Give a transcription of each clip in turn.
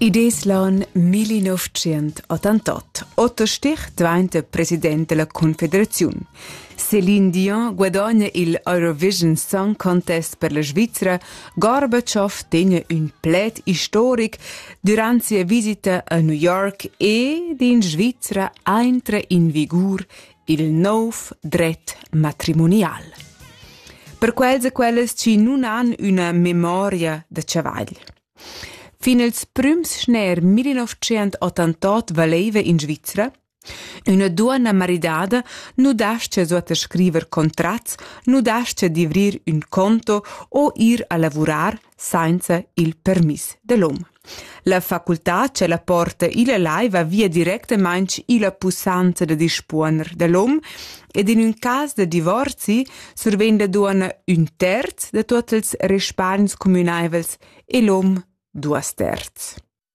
Id es l'on 1988. Otto Stich dvainta president della Confederaziun. Céline Dion guadagna il Eurovision Song Contest per la Svizzera. Gorbaciov tegna ün pled historic durant sia visita a New York e d'in Svizzera aintra in vigur il nov dret matrimonial. Per quels e quellas chi nun han üna memoria da chavagl. Fin ils prüms schner 1988 valeva in Svizzera Üna duonna maridada nu dascha suot scriver contrats, nu dascha d'ivrir ün conto o ir a lavurar sainza il permiss dell'hom. La facultà che la porta illa lai va via directamaing illa pussanza da dispuoner dell'hom ed in ün cas da divorzi survegn la duonna ün terz da tuot ils respargns cumünaivels e l'hom duos terz.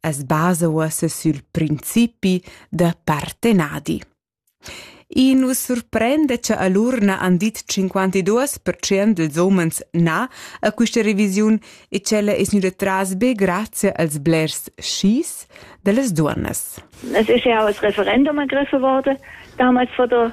as basa uossa sül principi da partenadi. I nu surprende cha all'urna han dit 52% dels homens na a quista revisiun e ch'ella es gnüda tras be grazie als blers skis da las duonnas. Es ist ja auch das Referendum ergriffen worden, damals von der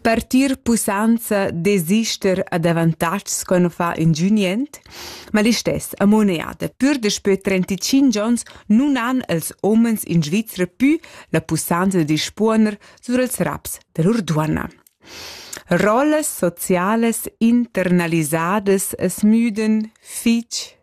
Partir pussanza desister ad avantatgs co no fa ingünient, ma listess amoneada pür daspö 35 ons nun han els homens in Svizra pü la pussanza da dispuoner sur els raps da lur duonna. Rollas socialas internalisadas es müden fich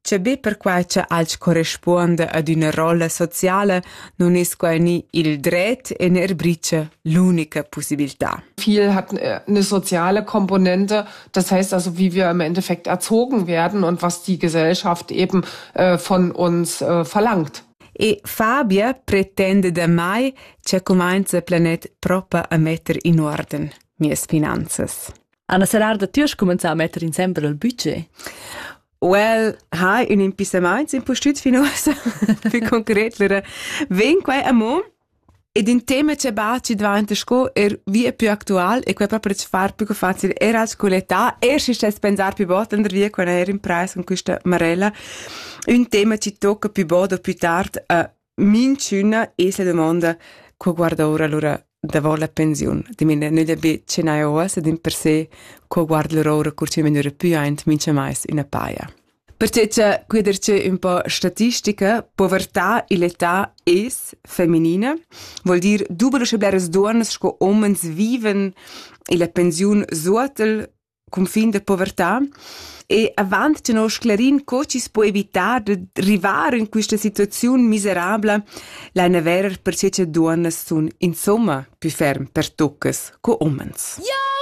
Che be perquai cha alch correspuonda ad üna rolla sociala nun es quai ni il dret e neir bricha l'unica pussibiltà. Viel hat eine soziale Komponente, das heißt also, wie wir im Endeffekt erzogen werden und was die Gesellschaft eben äh, von uns äh, verlangt. E Fabia pretende da mai che cumainza planet propa a metter in orden mias finanzas. Anna Serrarda, tu hast commenzado a mettere in sempre il budget. Well ha un impissamaints impustüt fin uossa più concret lura ven quai amo ed in tema che baci dvanta sco er via più actual e quai proprio ci far più facile er als coletà er si stes pensar più bot andar via quando er in preis con questa marella un tema ci tocca più bod o più tard a Minchüna es la dumonda co guarda oura lura davo la pensiun. Dimena nüda be che n'haja uoss ed in per se co guarda lura oura cur chi megnura pü aint mincha mais üna paja. Perche cha quia dir che ün po statistica, povertà e l'età es feminina, vuol dir dubel uschè bleras duonnas sco homens viven illa pensiun suottel cunfin da povertà e avant tenor sclerin co chi's po evitar da rivar in quista situaziun miserabla laina verer per che duonnas sun insomma plü ferm pertuccas co umens. Ja!